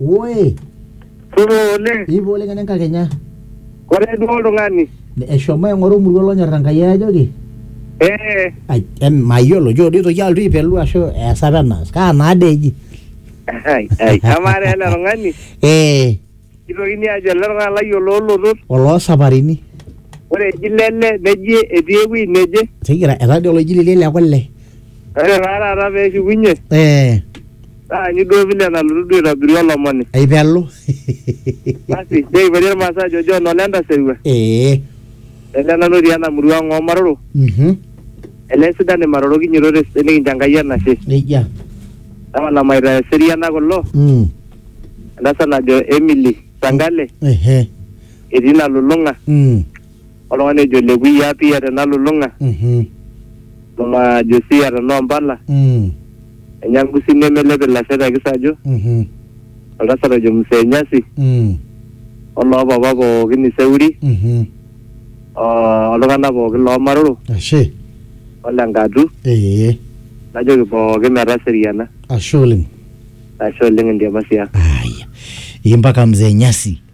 Woi, Supa oleng. ipo oleng ene nkakenya. Ore duo oltung'ani. Eshomo aing'oru emurua lonyorra Enkai ajoki. Eh. Ai, em, mayiolo, jo doi toki alotu aipelu ashu easa apa enaas. Kaa naa dee eji? Ai, ai. Amaa taa ele tung'ani, Eh, kitokini ajo ele tung'ani lai oloolotot. oloo saparini. Ore eji lele neji etii ewuei neje. Tigira, etaa dii oloji lele le kule. Ore taa taata peshukunye, Eh, Taanyu duo vile nalotu duo aitobiru olomoni. aipelu Basi, neipoti Irmaasai ajo John ole entasirua. ee Ele nanu otii ena murua ang' oo Maroro. mhm Ele sidan Imaroro kinyototo esidai nikincho Enkai enashe. nejia Tapala maita eseriana kulo. mm Entasat najo Emily Sangale ehe etii Nalulung'a. mm oltung'ani ojo lekuia pia tenalulung'a Mhm. mama josia tenoo mpala Mm. enya ngusi nemelep ilasho te kisaju Mhm. oltasat ojo msee nyasi Mm. oloo papa pookin iseuri Mhm. o- oltung'anak pookin loomaroro Ashe. ole nkatu Ee. najoki pookin metaseriana Ashe oleng. ashe oleng endiamasia Aya. Impaka mzee Nyasi.